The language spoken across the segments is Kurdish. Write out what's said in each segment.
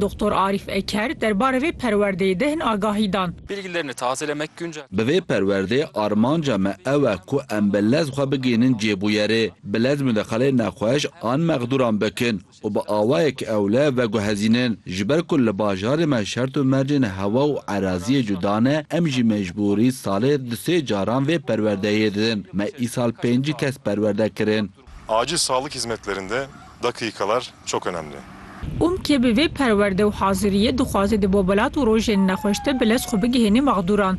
Doktor Arîf Eker derbarê vê perwerdeyê de hin agahî dan. Bi vê perwerdê armanca me ew e ku em bi lez xwe bigihînin cihê bûyerê, bi lez mudeqalê nexweş an mexdûran bikin û bi awayek ewle veguhezînin. Ji ber ku li bajarê me şert û mercên hewa û eraziyê cuda ne, em jî mecbûrî salê du sê caran vê perwerdeyê didin. Me îsal pêncî kes perwerde kirin. Acil sağlık hizmetlerinde Dakîkalar çok önemli. Umke bi vê perwerde û haziriyê dixwaze di bobelat û rojên nexweş de bi lez xwe bigihênê mexdûran.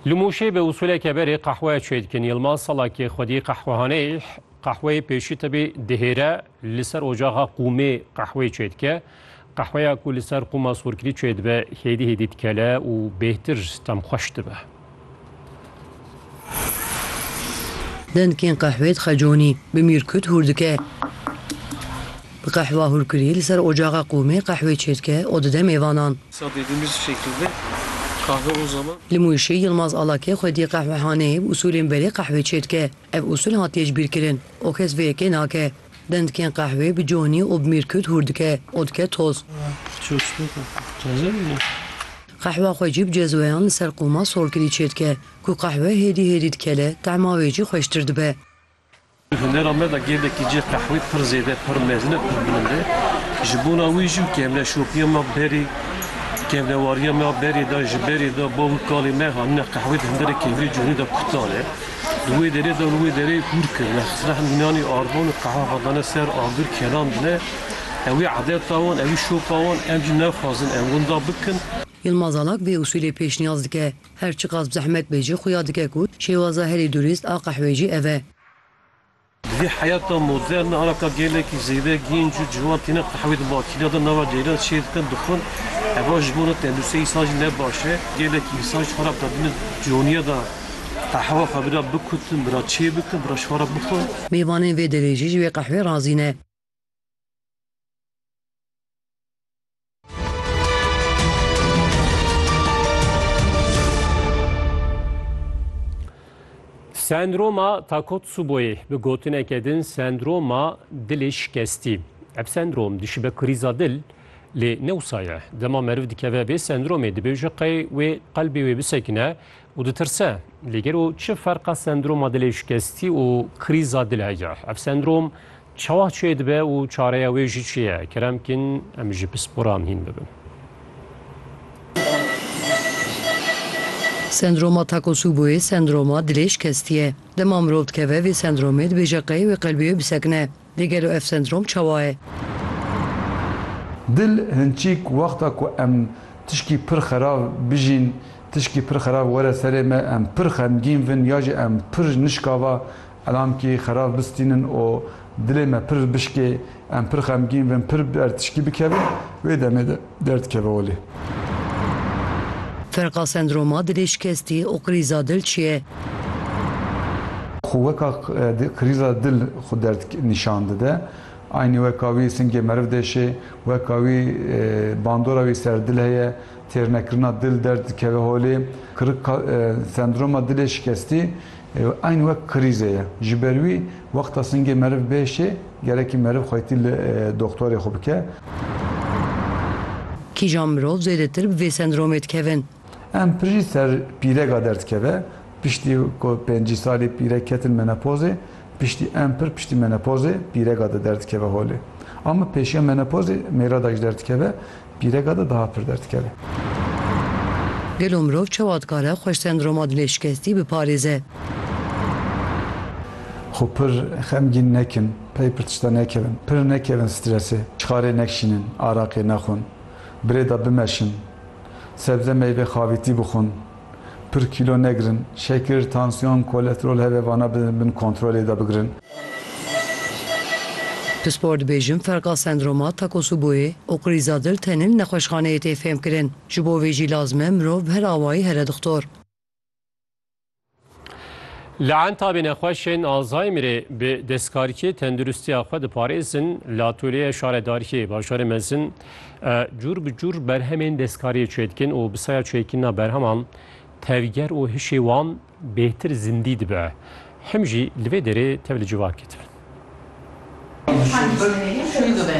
Li Mûşê bi usûleke berê qehwe çêdikin. Yilmaz Salakê xwedî qehwehaneyê qehweyê pêşî tibî dihêre. Li ser ocaxa qûmê qehwê çêdike. Qehweya ku li ser qûma sorkirî çêdibe hêdî hêdî dikele û bêhtir tem xweş dibe. Dengên qehwê dixe conî, bi mîrkut hûr dike. Bi qehwa hûrkirî li ser ocaxa qûmê qehwê çêdike û dide mêvanan. Li Mûşê Yilmaz Alakê xwedî qehwehaneyê bi usûlên berê qehwê çêdike. Ev usul hatiye ji bîr kirin û kes vê yekê nake. Dendikên qehwê bi conî û bi mîrkût hûr dike û dike toz. Qehwa xwe jî bi cezweyan li ser qûma solkirî çêdike. Ku qehwe hêdî hêdî dikele, tehma wê jî xweştir dibe. Di hunera me de gelekî cih qehwê pir zêde, pir mezin e, pir bilind e. Ji bona wî jî kevneşopiya me berê, kevnewariya me berê de, ji berê de bavûrkalê me hanine qehwê di hunderê kevnê conî de kutan e. Li wê derê de li wê derê hûr kir ya Sirehn mînanî arvan û qeha hadane ser agir kelandine. Ew ê edeta wan, ew ê şopa wan, em jî nexwazin em winda bikin. Yilmaz Alak vê usûlê pêşniyaz dike, her çiqas bi zehmet be jî xuya dike ku şêwaza herî durîst a qehwê jî ev e. Di vî heyata modern de ara ka gelekî zêde gênc û ciwan têne qehwê di makîna de nava ceyran çêr dikin, dixwin. Heva ji bo ne tenduristiyê însan jî ne baş e. Gelekî însan ji xwe re bi tadîna coniya de qehwa xwe bira bikutin, bira çêbikin, bira ji xwe re bixwin. Mêvanên vê derê jî ji wê qehwê razî ne. Sendroma Takotsuboyê bi gotineke din sendroma dilê şikestî. Ev sendrom dişibe krîza dil lê newsa ye. Dema meriv dikeve bê sendromê dibê ji qey wê qelbê wê bisekine û ditirse. Lê gelo çi ferqa sendroma dilê şikestî û krîza dil heye? Ev sendrom Çawa çê dibe û çareya wê jî çi ye? Kerem kîn em ji pisporan hîn bibin. Sendroma Takotsuboyê sendroma dilêj kestî ye. Dema mirov dikeve vê sendromê dibêje qey wê qelbîyê bisekine. Lê gelo ev sendrom çawa ye? Dil hinçîk wexta ku em tişkî pir xerav bijîn, tişkî pir xerav were serê me, em pir xemgîn vin ya jî em pir nişkava Elamkî xerab bistînin û dilê me pir bişkê, em pir xemgîn bin, pir bi ertişkî bikevin, wê demê de derdikeve holê. Ferqa sendroma dilê şikestî û krîza dil çi ye? Xwe weka krîza dil xwe derd nîşan dide. Aynî weka wî singê meriv deşê, weka wî bandora wî ser dil heye, têrnekirina dil derd dikeve holê. Kirik sendroma dilê şikestî Ew eyn wek krîze ye. Ji ber wî wexta singê meriv bê şê, gerekî meriv xwetî li doxtorê xwe bike. Kîjan mirov zêdetir bi vê sendromê dikevin? Em pijî ser pîrega derdikeve. Piştî ku pêncî salî pîrek ketin menopozê, piştî em pir piştî menopozê pîrega de derdikeve holê. Ama pêşiya menopozê mêra de jî derdikeve. Pîrega de daha pir derdikeve. Gelo mirov çawa dikare xwe ji sendroma dilê şikestî biparêze? Xwe pir xemgîn nekin, pey pir tişta nekevin, pir nekevin stresê, çixarê nekşînin, araqê nexwin, birêda bimeşin, sebze meyve xavîtî bixwin, Pir kîlo negirin. Şekir, tansiyon, kolesterol hebe vana bi bin kontrolê de bigirin. Pispor dibêjin ferqa sendroma Takotsuboyê û krîza dil tenil nexweşxaneyê tê fêmkirin. Ji bo vê jî lazim e mirov bi her awayî here dixtor. Li Entabê nexweşên Alzheimerê bi destkarkê tenduristiya xwe diparêzin, li Atolyeya Şaredariyê Bajarê Mezin cûr bi cûr berhemên destkariyê çêdikin û bi saya çêkirina berheman tevger û hişê wan bêhtir zindî dibe. Him jî li vê derê tev li civakê dibin.